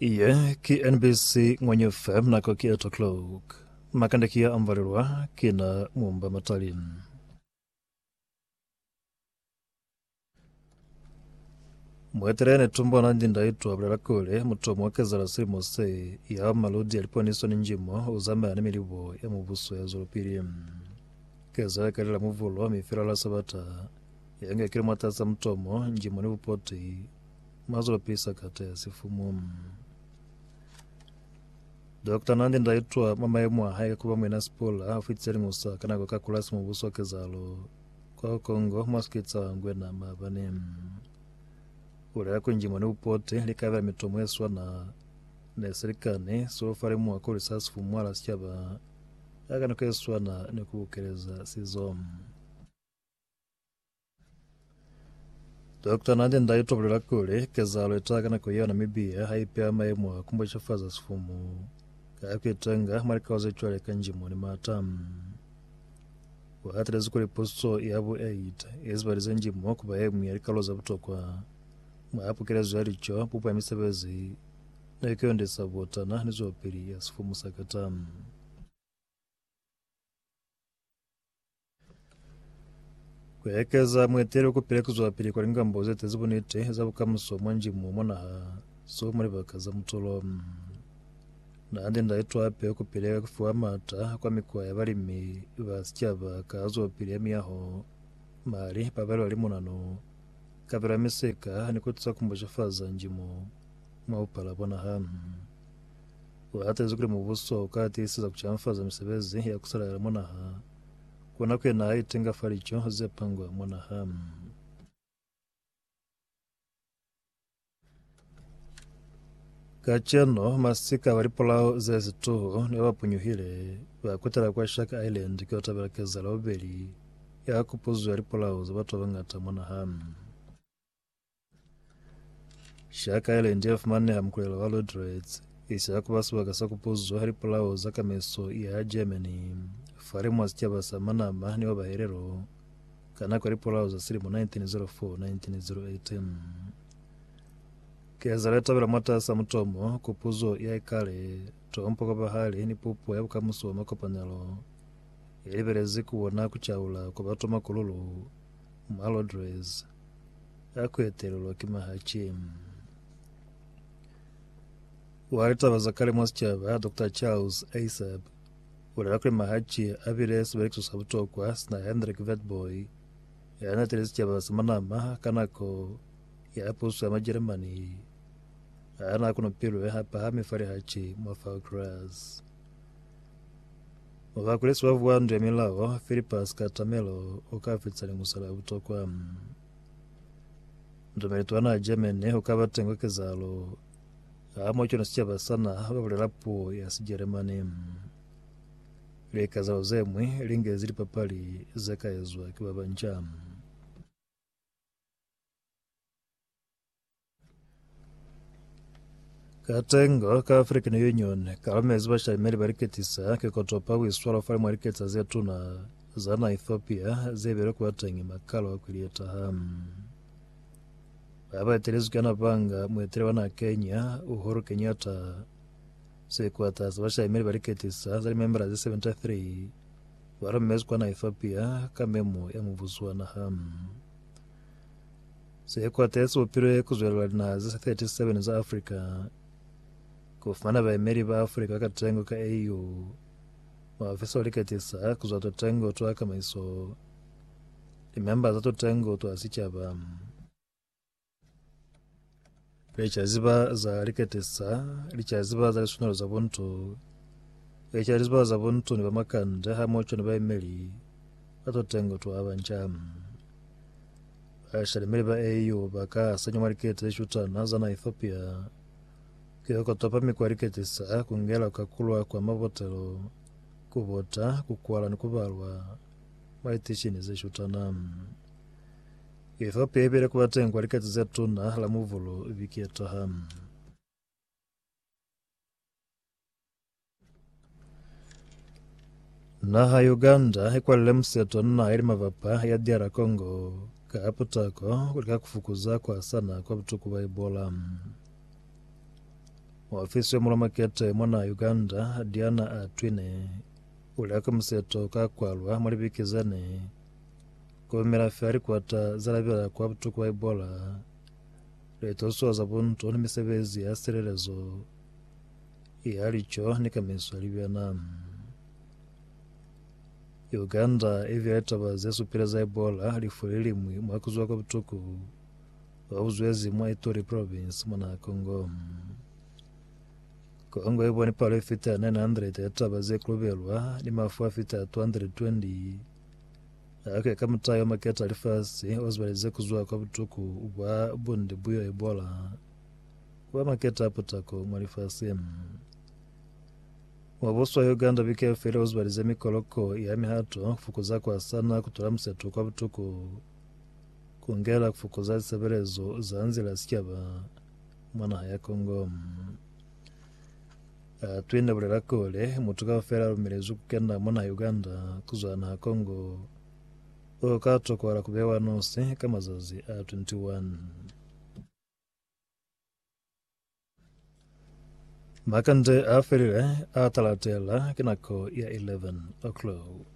Iye ki NBC Ngwenye FM nako ki 8 o'clock. Makande ki ya amvalelwa ki na mumba matali. Mwetelea ne tumbo na ndi ndai twa bulela kule mutomo wa kezala silimo se ya maludi ya liponiso ni njimo u zamaya ni milibo ya mubuso ya zwelopili. Kezala ka lila muvulo mi fela la sabata Yanga kilometres za mutomo, njimo ni bupoti, mazulo pili sakata ya sifumu. Dokta Nandi nda itwa mwa maemo a hae ka kuba muina sipola a fitse lingusa ka nako ka kulasi mubuso wa kezalo kwa Kongo mwa sikitsa ngwena maabane. Ulela ku njimo ni bupoti li ka bela mitomo e swana ne se likani so fa lemuha kuli sa sifumu mwala sichaba ka nako e swana ni ku bukeleza sizo. Dokta Nandi nda itobolela kuli kezahalo itaha ka nako yona mi biha ha ipeha maemo a kumbochafaza sifumu ka kuitenga mwa likao ze cwale ka njimo ni mata. Uhatelezi kuli puso ya bu 8 izibalize njimo kuba yengwi ya likalolo za butokwa mwa pukelezo ya lico, bupo ya misebezi ni kuyondisa butana ni zwelopili ya sifumu sa Qatar. Ku ekeza mueteli ku pila ki zwapili kwa lingambo ze tezi buniti za bukamuso mwa njimo mwa naha so mwa libaka za mutulo. Naha ndi nda itwa hape ku pile ka ku fiwa maata kwa mikwa ya balimi ba sicaba ka zwapili ya miyaho, mali, pabelo ya limunano, kabelo ya misika ni ku tusa ku mbucafaza njimo mwa bupala bwa naha. U hatezi kuli mubuso u ka tiiseza ku canfaza misebezi ya ku salalela mwa naha, ku na ku ye naha itenga fa lico ze pangwa mwa naha. Kacenu, masika ba lipulao ze situhu ne ba punyuhile, ba kutela kwa Shark Island ku yo tabela kezahalo ya bubeli ya kupuzo ya lipulao za batu ba bañata mwa naha. Shaka Island yafumaneha mukulelo wa Lodretz, isi yakuba sibaka sa kupuzwa ha lipulao za kameso ya ha Germany, fale mwa sicaba sa Manama ni wa Bahelelo, ka nako ya lipulao za silimo 1904-1908. Kezelo ya tabela mwatasa mutomo ku puzo ya ikale, Tompo kwa bahali ni pupo ya bukamuso bwa makopanelo, yalibelezi kubona kucaula kwa batu makululu, Malotres a kuetelelwa ki mahaci. Wa litaba za kale mwa sicaba, Doctor Charles Aisab, ulela kuli mahaci a bile sibelekiso sa butokwa sina Hendrik Witbooi ya natile sicaba sa manama ka nako ya puso ya Majeremani a na kunupilwe hapahami fa lihaci mwa Falklands. Bakulesi ba vuwandu ya milao, Filipa sikatamelo u ka fitisa liñusa la butokwa. Mutameli twa naha Germany u ka ba teng kwa kezahalo hamoho cwana sicaba sa naha ba bulela puo ya Sijeremani. Likazahalo ze ñwi li ngezi lipapali ze ka ezwa ki ba banca. Katengo ka African Union kalumezi bashalimeli baliketisa kikotopa kuiswala fale mwa liketsa zetuna za na Ethiopia zebile kubatengi makalo a kwili yetaha. Baba etelezwi ka napanga muetele wana Kenya Uhuru Kenyatta sekwata sa bashalimeli baliketisa za limembela ze 73 balumezi kwana Ethiopia ka memo ya mubuso wa naha. Sikwata si bupilwe ku zwelela linaha ze 37 za Africa ku fumana baemeli ba Africa ka katengo ka AU. Muofisi o liketisa ku zwa tutengo twa kamaiso, limemba za tutengo twa sicaba, Leca ziba za liketesa, leca ziba za liswanelo za buntu, leca liziba za buntu ni bamakande hamoco ni baemeli ba tutengo twa banca. Bashalemeli ba AU ba ka asanywa mwa likete ze shutana za na Ethiopia ki za ku topa mikwa ya liketesa, ku ngela ku kakulwa kwa mabotelo, ku bota, ku kwala ni ku balwa mwa litishini ze shutana. Ethiopia ipile kuba teng kwa likati ze tuna la mubulu biketa ha. Naha ya Uganda ikwalile museto ni naha yeli mabapa ya DR Congo ka putako kulika kufukuza kuhasana kwa butuku bwa Ebola. Ofisi ya mulamakete mwa naha Uganda Diana Atwine ulya ka museto ka kwalwa mwa libiki zene Kolumela fela likwata za lapela kwa butuku ba ibola, litosuwa za bunto ni misebezi ya silelezo ya lico ni kamiso ya libena. Uganda i bile litaba ze supile za ibola lifu li limwi mwa kuzuwa kwa butuku ba buzwezi mwa Ituri province mwa naha Congo. Congo i boni palo e fita 900 ya litaba ze kolobelwa ni mafu a fita 220 Hake ka mutayo maketa lifasi o zibaleze kuzwa kwa butuku bwa bunde buyo ibola kuba maketa a putako mwa lifasi. Mwa buswa Uganda bikeo feli o zibaleze mikoloko ya mihato kufukuza kwasana kutula museto kwa butuku kungela kufukuza lisebelezo za nzila sikeba mwa naha ya Congo. Uh, twine bulela kule mutu kaufela lumelezwi kukenda mona Uganda kuzwa naha Congo o ka tokola kubewa nosi ka mazazi a 21 makande a felile a talatela ke nako ya 11 o'clock